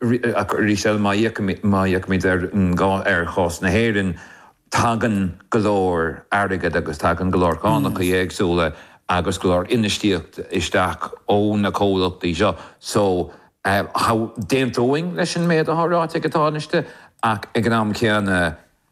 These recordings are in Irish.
arís eile, má fhéachaimid ar chás na hÉireann, tagann go leor airgid agus tagann go leor cánacha éagsúla agus go leor infheistíocht isteach ó na comhlachtaí seo. So, d'aontóinn leis an méid atá ráite ag an Tánaiste ach ag an am céanna,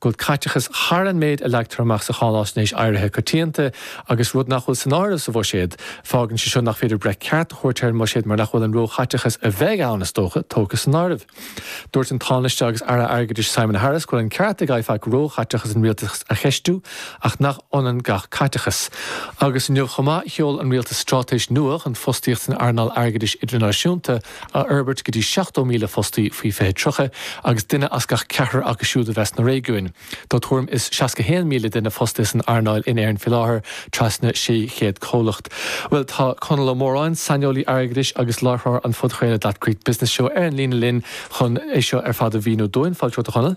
go bhfuil caiteachas thar an méid a leagtar amach sa cháináisnéis éirithe coitianta agus, rud nach bhfuil san áireamh sa bhuiséad, fágann sé seo nach féidir breith ceart a thabhairt ar an mbuiséad mar nach bhfuil an róchaiteachas a bheidh ann, is dócha, tógtha san áireamh. Dúirt an Tánaiste agus Aire Airgeadais Simon Harris go bhfuil an ceart ag IFAC róchaiteachas an Rialtais a cheistiú ach nach ionann gach caiteachas. Agus inniu chomh maith sheol an Rialtas stráitéis nua chun fostaíocht san earnáil airgeadais idirnáisiúnta, a fhorbairt go dtí 70,000 fostaí faoi 2030 agus duine as gach ceathrar acu siúd a bheith sna réigiúin. Tá tuairim is 61,000 duine fostaithe san earnáil in Éirinn faoi láthair, trasna 600 comhlacht. Bhuel, tá Conall Ó Móráin, saineolaí airgeadais agus láithreoir an phodchraoladh That Great Business Show ar an líne linn chun é seo ar fad a mhíniú dúinn. Fáilte romhat, a Chonaill.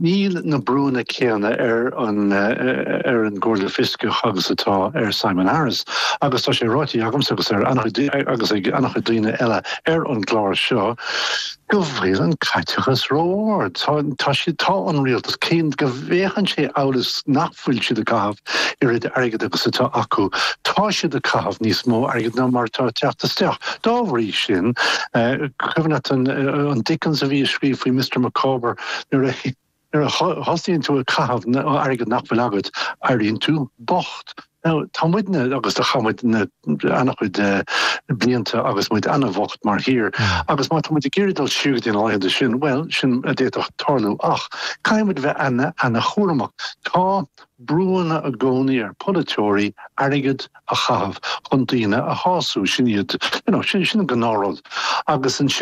Níl na brúanna céanna ar an ar an gComhairle Fioscach agus atá ar Simon Harris agus tá sé ráite agamsa agus ar an-chuid agus ag an-chuid daoine eile ar an gclár seo go bhfuil an caiteachas ró-ard. Tá siad tá an Rialtas cé go bhféachann sé amhail is nach bhfuil siad ag caitheamh oiread airgid agus atá acu. Tá siad ag caitheamh níos mó airgid ná mar atá ag teacht isteach. Dá bhrí sin, cuimhin leat an Dickens a bhí ag scríobh faoi Mister Micawber, nuair a thosaíonn tú ag caitheamh airgead nach bhfuil agat, éiríonn tú bocht. Now, tá muidne, agus chaith muid na. an-chuid de na blianta agus muid an-an-bhocht mar thír agus má tá muid ag iarraidh dul siar go dtí na laethanta sin, bhuel, sin a d'fhéadfadh tarlú ach caithfidh muid a bheith an-an-chúramach. Tá brúanna i gcónaí ar pholaiteoirí airgead a chaitheamh chun daoine a shású, sin iad, you know, sin an gnáthrud agus ansin,